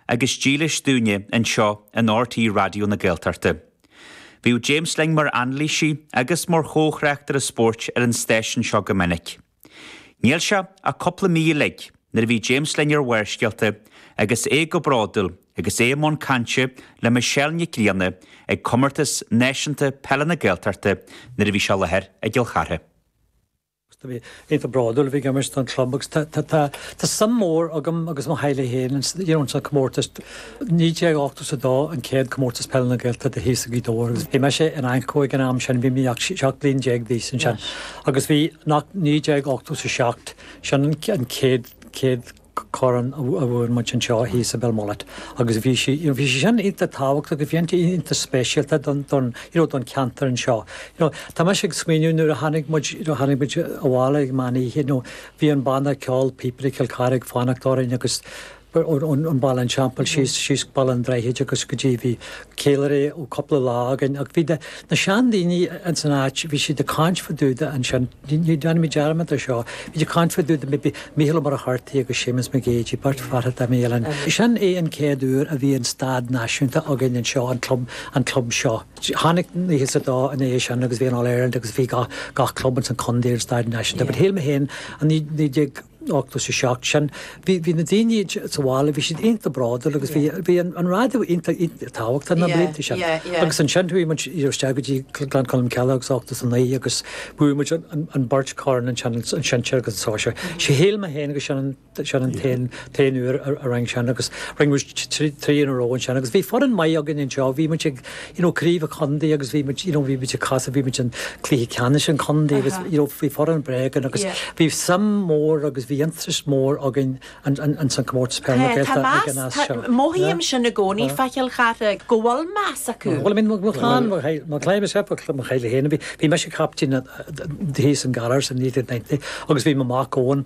agus dílis dúinne anseo in RTÉ Raidió na Gaeltachta. Bhíodh James linn mar anailísí agus mar chomhthráchtaire spóirt ar an stáisiún seo go minic. Níl sé ach cúpla mí uilig nuair a bhí James linn ar Bharrscéalta agus é go bródúil agus é i mbun cainte le Michelle Nic Grianna ag Comórtas Náisiúnta Peile na Gaeltachta nuair a bhí sé i láthair i gCill Chartha. Á iontach bródúil a bheith ag imirt don club agus tá suim mór agam agus mo theaghlach féin ins an comórtas. 1982 an céad comórtas Peile na Gaeltachta thíos i Gaoth Dobhair agus bhí mise in AnCO ag an am sin, bhí mé 17 bliain d'aois ansin agus bhí 1987 sin an céad Corn a bhfuair muid anseo thíos i Belmullet agus bhí sí, you know, bhí sí sin iontach tábhachtach, bhí sí iontach speisialta don, don, you know, don cheantar anseo. You know, tá mise ag smaoineamh nuair a tháinig muid, you know, tháinig muid abhaile ag meán oíche, you know, bhí an banna ceoil Píobairí Chill Chartha ag fanacht orainn agus ón, ón, ón Bhaile an Teampaill síos, síos go Baile an Droichid agus go dtí, bhí ceiliúradh ó cúpla lá againn ach bhí na sean daoine ins an áit, bhí siad ag caint fá dtaobh de ansin, ní dhéanfaidh mé dearmad ar seo, bhí siad ag caint fá dtaobh de maybe Mícheál Ó Muircheartaigh agus Séamus Mac Géidigh, beirt fear atá i mí Eilean. Sin é an céad uair a bhí an staid náisiúnta againn anseo, an club, an club seo. Tháinig nócha is a dó ina dhiaidh sin agus bhí an All Ireland agus bhí gach, gach club ins an condae ar an staid náisiúnta but shíl mé féin i naoi déag, ochtó is a seacht sin. Bhí na daoine sa bhaile, bhí siad iontach bródúil agus bhí an raidió iontach tábhachtach na blianta sin. Agus ansin chuaigh muid isteach go dtí Gleann Cholm Cille agus ochtó is a naoi agus bhuaigh muid an beirt corn ansin, an sinsear agus an sóisear. Sé shíl mé féin agus sin an t-aon uair a rinneadh sin agus rinne muid trí in a row ansin agus bhí foireann maith againn anseo, bhí muid ag you know craobh an chontae agus bhí muid you know bhí muid ag casadh bhí muid an cluiche ceannais an chontae agus you know bhí foireann breá againn agus bhí suim mór agus bhí interest mór againn an an ins an comórtas peile Gaeltachta ag an as seo. Mothaím sin i gcónaí fá Chill Chartha go bhfuil meas acu. Bhuel I mean mo chlann mo chlann mo chlann myself mo chlann mo theaghlach féin bhí bhí mise captaen thíos i nGallaras i 1990 agus bhí mo mac Eoin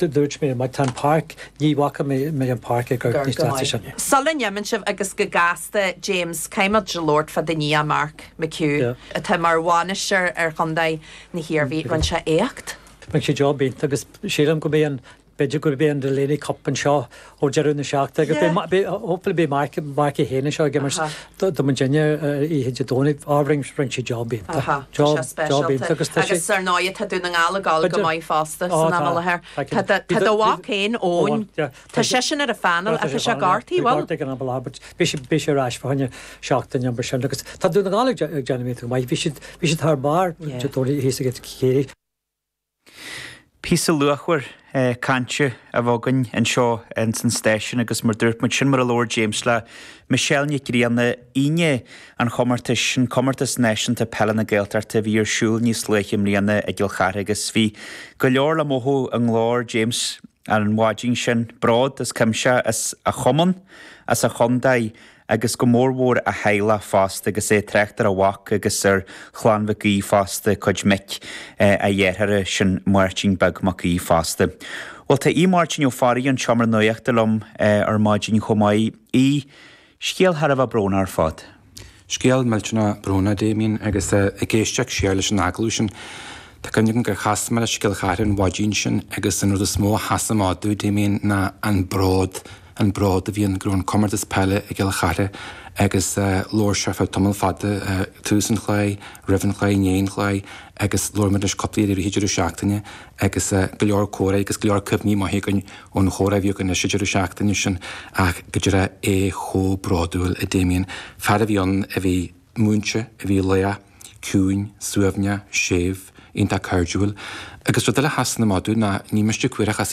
Dúirt mé, má tá an páirc, ní bhfaca mé an páirc ag an stáitse sin. Sula n-imíonn tú uaim, agus go gasta, James, caithfidh muid labhairt fá do nia, Mark McHugh, atá mar bhainisteoir ar chontae na hIarmhí. Rinne sé éacht. Rinne sé job iontach agus sílim go mbeidh an, b'fhéidir go mbeidh an Delaney Cup anseo Ó deireadh na seachtaine agus hopefully beidh Mark é féin anseo ag imirt do muidinne oíche Dé Domhnaigh, á but rinne sé job iontach, job iontach agus tá sé. Agus ar ndóigh tá Dún na nGall ag gabháil go maith fosta san am i láthair. Tá do mhac féin Eoin, tá seisean ar an phainéal, ach tá sé gortaithe, bhuel. Tá sé gortaithe san am i láthair but beidh sé ar ais fá choinne seachtaine nó mar sin agus tá Dún na nGall ag déanamh iontach go maith, bhí siad thar barr Dé Domhnaigh thíos i gCiarraí. Píosa luachmhar cainte a bheith againn anseo ins an stáisiún agus mar dúirt muid, sin mar a labhair James le Michelle Nic Grianna, Aoine an chomórtais, an Comórtas Náisiúnta Peile na Gaeltachta a bhí ar siúl níos luaithe i mbliana i gCill Chartha agus bhí go leor le mothú i nglór James an mhaidin sin, bród as cuimse as a chumann, as a chontae agus go mór mhór a theaghlach fosta agus é ag trácht ar a mhac agus ar chlann Mhic Aoidh fosta, cuid mic a dhearthára, sin Máirtín Beag Mac Aoidh fosta. Bhuel tá Aodh Máirtín Ó Fearraigh ón tSeomra Nuachta liom ar maidin chomh maith. Aoidh, scéal thar a bheith brónach ar fad. Scéal millteanach brónach a Damien agus ag éisteacht siar leis an agallamh sin tá cuimhne agam gur chas mé leis i gCill Chartha an mhaidin sin agus an rud is mó a sheas amach domh a Damien ná an bród an bród a bhí air go raibh an comórtas peile i gCill Chartha agus labhair sé ar feadh tamall fada, tús an chláir, roimh an chláir, i ndiaidh an chláir agus labhair muid leis cúpla uair i rith an deireadh seachtaine agus go leor comhrá agus go leor cuimhní maithe againn ón chomhrá a bhí againn leis an deireadh seachtaine sin ach go deimhin é chomh bródúil a Damien, fear a bhí ann a bhí múinte, a bhí lách, ciúin, suaimhneach, séimh, iontach cairdiúil agus rud eile a sheas amach domh ná ní miste cuir ach as a